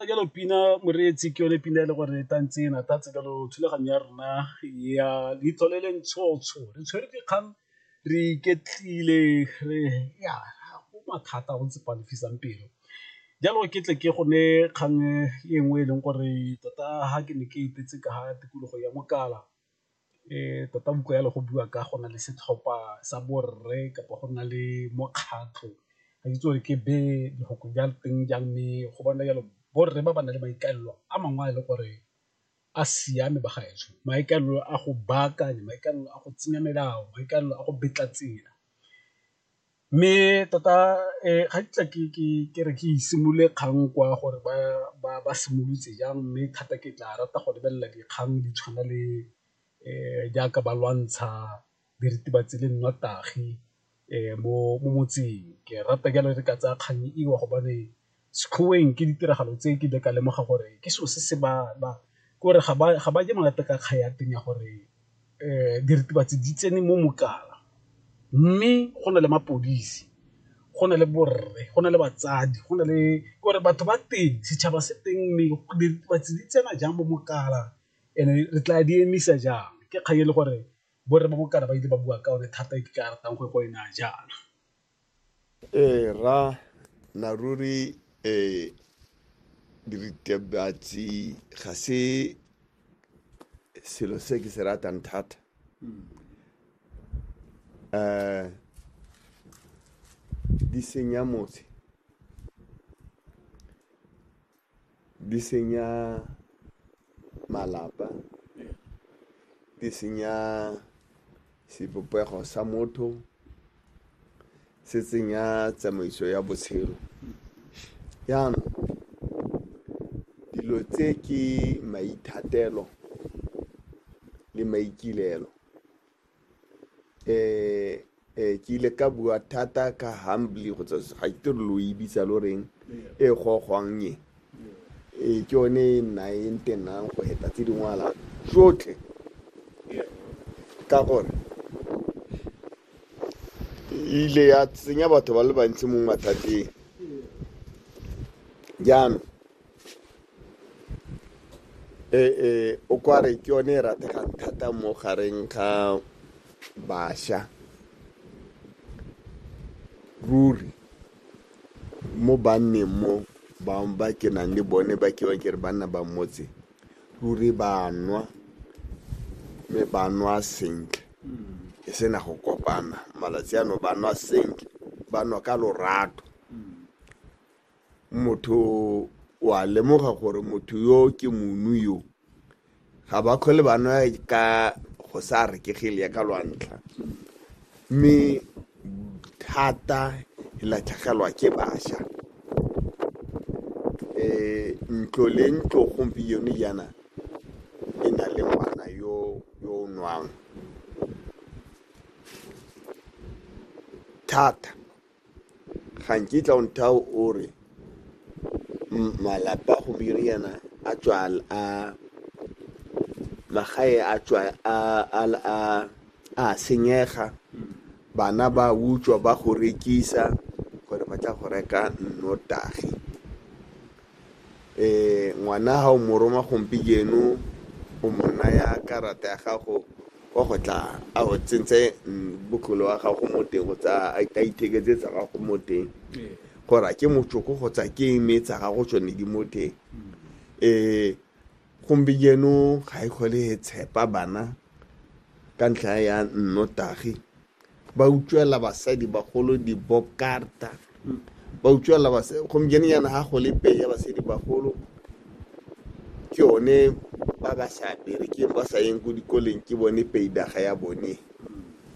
jalo pina moreetsi ke yone pina e le gore e tantse e natatse jalo thulaganyo ya rona ya leitlho le le ntshotsho re tshwere dikgang re iketlile re ya go mathata go ntse palefisang pelo jalo ke tle ke gone kgang e nngwe e leng gore tota ga ke ne ke etetse ka ga tikologo ya mokala Tota buka jalo go bua ka go na le setlhopha sa borre kapa go nna le mokgatlho ga ke itse gore ke be lefoko la teng jang mme go bona jalo borre ba ba nang le maikaelelo a mangwe a e le gore a siame ba gaetsho, maikaelelo a go baakanya, maikaelelo a go tsenya melao, maikaelelo a go betla tsela. Mme tota ga kitla ke re ke simolole kgang kwa gore ba simolotse jang, mme thata ke tla rata go lebelela dikgang di tshwana le jaaka ba lwantsha diritibatsi le nnotagi mo motseng. Ke rata jalo re ka tsaya kgang eo gobane Sekgoweng ke ditiragalo tse ke ile ka lemoga gore ke selo se se ba ke gore ga ba je monate ka kgang ya teng ya gore diritibatsi di tsene mo mokana, mme go na le mapodisi, go na le borre, go na le batsadi, go na le gore batho ba teng setšhaba se teng mme diritibatsi di tsena jang mo mokana and-e re tla di emisa jang ke kgang e le gore borre ba mokana ba ile ba bua ka one thata e ke ka ratang go e ko e naya jaana. Ee, ra na ruri um diritibatsi ga se selo se ke se ratang thata um di senya motse Di senya malapa, di senya sebopego sa motho, se tsenya tsamaiso ya botshelo. Jaanong dilo tse ke maithatelo le maikaelelo. eh eh ke ile ka bua thata ka humbly go tsa ga ke tiro lo e bitsa lo reng e gogwang e e ke yone e nna e ntenang go heta tse dingwala tsotlhe ka gore e ile ya tsenya batho ba le bantsi mo mathateng jaanong ee o kware ke yone e rategang thata mo gareng ga bašwa ruri mo banneng mo bangwe ba ke nang le bone ba ke ke re banna ba motse ruri ba nwa mme ba nwa sentle e sena go kopana malatsi ano ba nwa sentle ba nwa ka lorato motho wa lemoga gore motho yo ke monu yo ga ba kgole ba nwa ka go sa rekegele ya ka lwantlha mme thata e latlhegelwa ke bašwa um ntlo le ntlo gompieno jaana e na le ngwana yo yo o nwang thata ga nkitla o nthao o re malapa go biriana a tswal a magae a tswa a a a a senyega bana ba utswa ba go rekisa gore ba tla go reka nnotagi Ee, ngwana ga o mo roma gompieno o mo naya karata ya gago wa go tla a go tsentse botlolo wa gago mo teng go tsa a itheketse tsa gago mo teng gore a ke motsoko go tsa ke eme tsa gago tsone di mo teng um gompieno ga e kgole e tshepa bana ka ntlha ya nnotagi ba utswela basadi bagolo dibobkarta ba utswela basadi gompieno yana ga go le pei ya basadi bagolo ke yone ba ba sa berekeng ba sa yeng ko dikoleng ke bone peidaga ya bone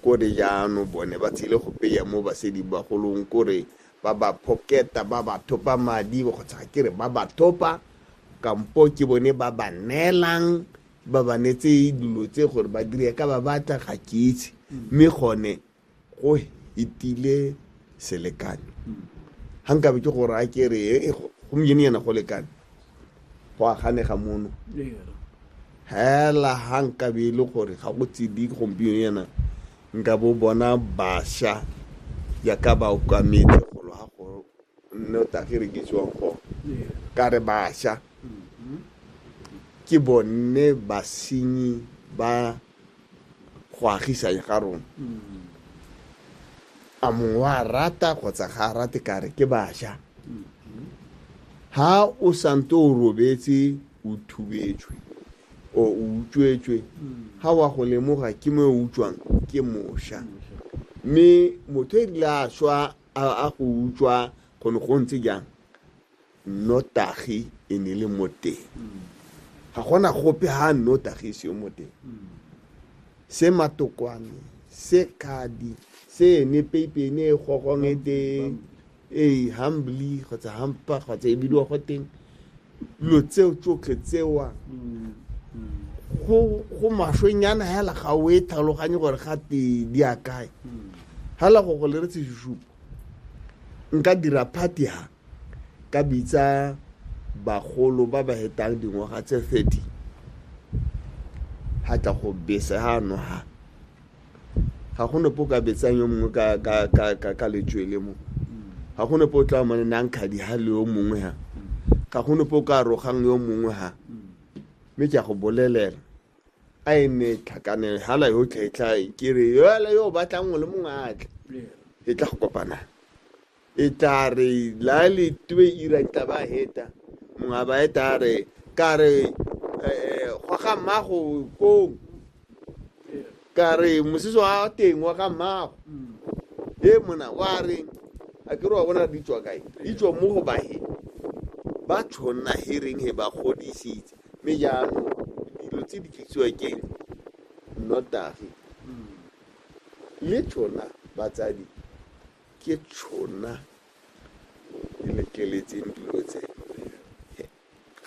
kore jaano bone ba tsile go peya mo basadi bagolong kore ba ba phoketa ba ba thopa madi kgotsa ke re ba ba thopa kampo ke bone ba ba neelang ba ba netse dilo tse gore ba dire ka ba batla ga ke itse mme gone go etile selekano ga nkabe ke gore a ke re "Eh, go- gompieno yana go lekane go aganega mono hela ga nkabe e le gore ga go tsedi gompieno yana nka bo bona basha yaka ba okametse golo ga go mme o tla kere ke tswang go ka re basha ke bone basenyi ba go agisang ga rona a mongwe wa rata kgotsa ga a rate kare ke basha ha o sante o robetse o thubetswe o o utswetswe ha wa go lemoga ke mo o utswang ke mosha mme motho e rile a swa A go utswa go ne go ntse jang? Nnotagi e ne le mo teng. Ga gona gope ha nnotagi e seyo mo teng. Se matokwane, se kadi, se ene peipe ene e gogong e teng, ee, humbly kgotsa hampa kgotsa e bidiwa go teng. dilo tseo tsotlhe tsewa go maswenyana hela ga o e tlhaloganye gore ga te di a kae hela go go le re tseshupo nka dira party ha ka bitsa bagolo ba ba hetang dingwaga tse 30 ha tla go bese ha no ha ga go nopo ka betsang yo mongwe ka ka ka ka ka letswele mo ga go nopo o tla mane nang khadi ha le yo mongwe ha ga go nopo ka rogang yo mongwe ha mme ke a go bolelela a e ne tlhakane hala yo tlhetlha ke re yola yo batlang o le mongwe a tle e tla go kopanang E tla re la le twe ira tla ba heta mongwe ba eta a re ka re gwa ga mmago kong ka re mosese wa teng wa ga mmago e mona wa re a ke re wa bona di tswa kae di tswa mo go bahe ba tshwanna he reng he ba godisitse mme jaanong dilo tse di tlisiwa keng nnotagi le tshona batsadi ke tšhona di letleletseng dilo tse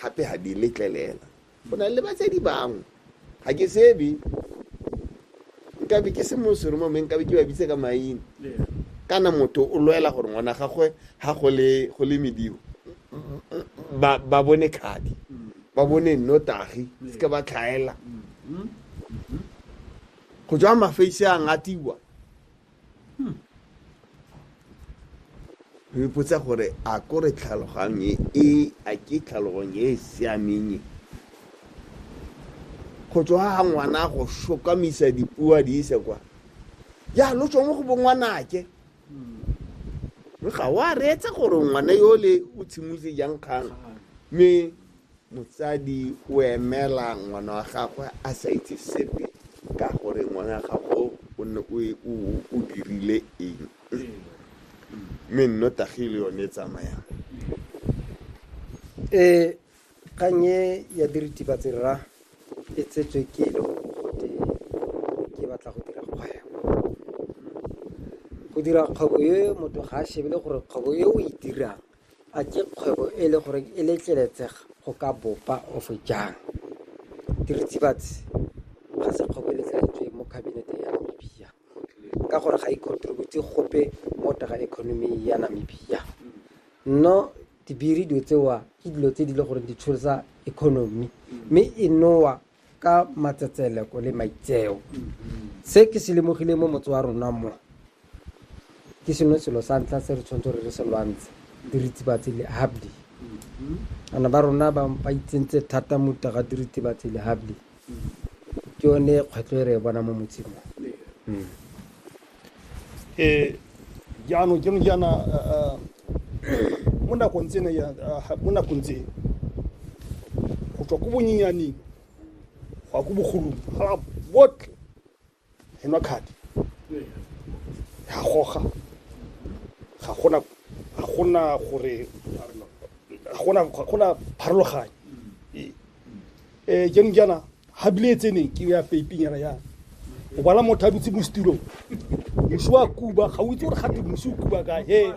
gape ga di letlelela go na le batsadi bangwe ga ke sebe nkabe ke se mosoro mo nkabe ke ba bitse ka maina kana motho o lwela gore ngwana gagwe ga go le mediwo ba bone kgadi ba bone nnotagi se ka ba tlhaela go tswa mafeise a ngatiwa hmm. re ipotsa gore a ko re tlhaloganye e, e a ke tlhaloganye e e siameng e go tswa ga ngwana go shokamisa dipua di ise kwa ya lo tswa mo go bo ngwanake hmm. ga wa reetsa gore ngwana yo le o tshimotse jang kgang mme Motsadi o emela ngwana wa gagwe a sa itse sepe ka gore ngwana wa gago o ne o e- o o- o dirile eng mme nnotagi le yone e tsamayang e kgang e ya diritibatsi rra e tsetswe ke le gore gote ke batla go dira kgwebo go dira kgwebo e motho ga a shebele gore kgwebo e o e dirang A ke kgwebo e le gore e letleletsega go ka bopa ofe jang? Diritibatsi ga se kgwebo e letleletsweng mo kabineteng ya Namibia ka gore ga e contribute gope mo taga economy ya Namibia. No dibiri dilo tsewa ke dilo tse di le gore di tsholotsa economy mme e nowa ka matsetseleko le maitseo se ke se lemogile mo motse wa rona mo ke sengwe selo sa ntlha se re tshwanetse re re se lwantshe diritibatsi le habdi ana ba rona ba ba itsentse thata mo taga diritibatsi le habdi ke yone kgwetlho e re e bona mo motseng mo ee jaanong ke jaana mo nakong tsena ya mo nakong tse go tswa ko bonyenyaneng go ya ko bogolong ga botlhe e nwa kgadi ga goga ga gona ga gona gore ga gona ga gona pharologanyo eh jaanong jaana ga bile e tseneng ke ya faping yana yana o bala motho a dutse mo setirong mosi wa kuba ga o itse gore gate mosi o kuba ka he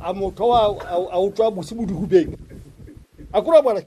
a motho a o tswa mosi mo dihubeng a kore a bala